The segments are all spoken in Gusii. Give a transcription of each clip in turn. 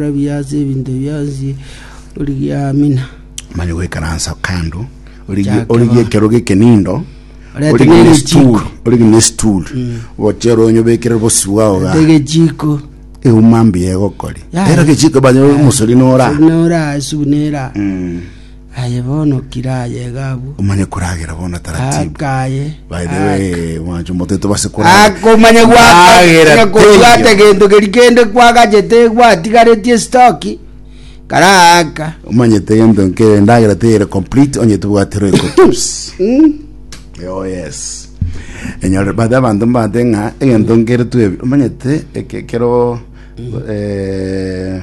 Rabia ase ebinto bionsi, origie Amina. Manya goikaransa kando, origie Chake origie ba. ekerogo eke nindo, Orete origie ne n'egechiko. stool, origie ne stool, gochere onyobekerere bosi bwao ga. Ate egechiko Euma mbuya egokori. Ya. Ero gechiko banya omosori nora. nora asubu nera Aye bono kira ayega abwo. Omanye koragera bono taratibu. Aka aye. By the way, mwancho omoto etobase koragera. Aka omanye gwaka. Agera Aka kobwata tenyo. egento keri kende kwagachete gwatigaretie stoki. Kara aka. Omanyete egento nkere ndagera teyere complete onye tobwate roiko tips. Mm. Oh yes. Enyore bade abantu mbate ng'a egento nkere twebi. Omanyete eke kero eh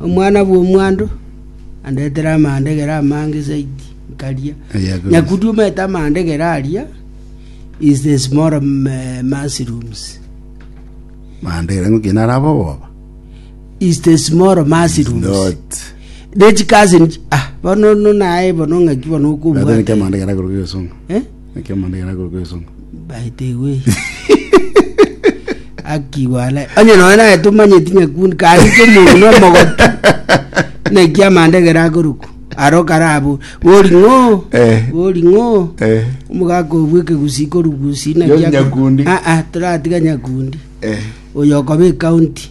Omwana bw'omwando andetere amandegera amange zaidi nkaria. Nyakundi omanyete amandegera aria is the small um, eh, mushrooms. Mandegera ng'o kina araba oboba. Is the small mushrooms. Not. Nechikazi nchi- ah, bono no naye bono ng'aki bono Ratene kia okobwata. mandegera korwa gesongo. Eh? Naki amanda ekero akorokwa esongo. Baetegwe. Aki bwana. Onye noe naye tumanyeti nyakuni kari kemuru no mogoti. Neki amanda egera akoruku. Aro karabu. Bori ngo. Eh. Bori ngo. Eh. Omugaka obwe kegusi korugusi na Yo kia. nyakundi. Ah ah turatiga nyakundi. Eh. Oyo kobe county.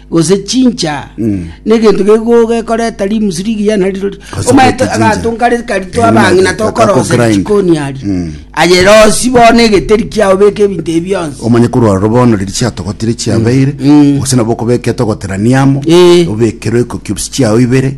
gose chincha negento gego gekoreta limusu rigiya nariro ri- Gose omanyete gete chincha. agato nkare kari Eh, twabang'ina nimanyete, tokorosa kakogrind. chikoni ari Mm. aye rosi bono egeteri kiao beka ebinto ebi bionsi omanye korwa roro bono riri chiatogotire chiabeire gose nabo okobeka etogoterania amo Eh. obekere iko cubes chiao ibere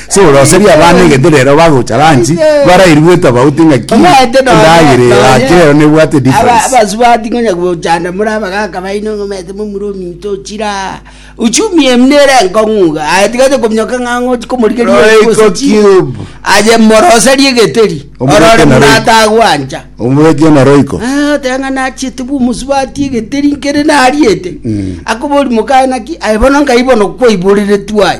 Soroserie abana egento rero bagocha lunch barairwe tofauti ng'aki Omanyete nonye endagera eye nonye yake rero nebwate aba- difference. abasubati ngonya gochanda more abagaka baino ng'a omanyete momura ominto ochire aa uchumi eye buna ere enkong'u iga aye tiga oche kominyoka ng'a ang'e ochi komorigeria Royco oria gose chi Cube. aye moroserie egeteri Omoreke orore na buna Royco. atagwancha Omoreke na roiko Ah, oteba ng'a nachiete bwa omosubati egeteri nkere nariete Mm. akobori mokae naki aye bono nkai bono kwaiboreretu aye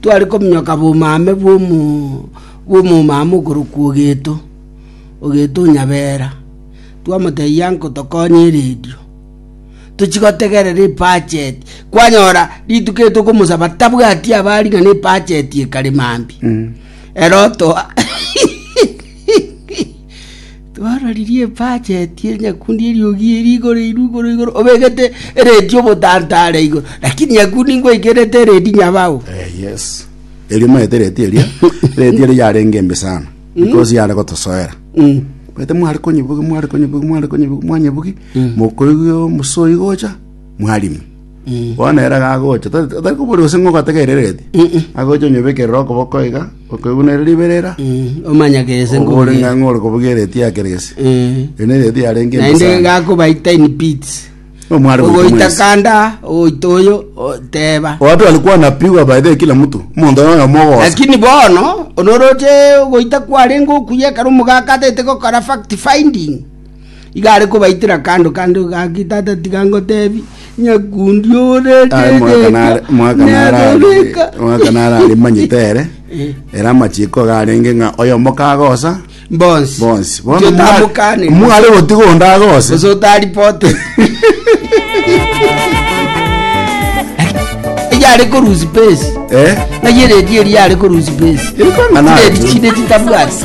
Tware kominyoka bomaame bw'omomama okorokwa Ogeto, Ogeto o Nyabera. Twamotebia nko tokonye eredio. Tochi gotegerera ebacheti. Kwanyora rituko eri tokomosaba tabwati aba ari ng'a nebacheti ekare mambia. Ere otoa Twaroririe ebajeti ye nyakundi y'eriogi eri igoro eirwe igoro igoro, obegete eredi y'obotanta are igoro, lakini nyakundi ngwaikerete eredi nyabao. Eh, yes erio maete reti eria reti eria yarenge embe sana because yare gotosoera Mm. maete mware konyebugi mware konyebugi mware konyebugi mwanyebugi mokoigwa omosoyi gocha mwarimi Bono ere gagocha, ta- ta- tari koboria gose ng'a ogategereretie, agocha onyebekerere okoboko iga, okoigunere riberera, Mm, omanya gese oba ore ng'a ng'ore kobugia ereti yake gese. Eri nereti yarenge naende embasane. gakobaita in pits Omware goita ogoita mwesi. kanda ogoita oyo o- teba Watu walikuwa wanapigwa by the way, kila mtu mundu anaona mogosa lakini bono onoroche ogoita kwarenge okuya ekero omogaka atete gokora fact finding Igo are kobaitera kando kando, gaki, Tata, tiga ngotebi, nyakundi ore Aye mwaka nare- mwaka nare are- neroreka. mwaka nare are manyete ere ere amachiko iga arenge ng'a oyomo kagosa Bonsi. bonsi Ndio tamukane. mware gotiga onde agose Gose otaripote. Iga are korusi pesi. Eh? Naye redi eri are korusi pesi. Iri kwang'a naye. Redi chinde titabwati.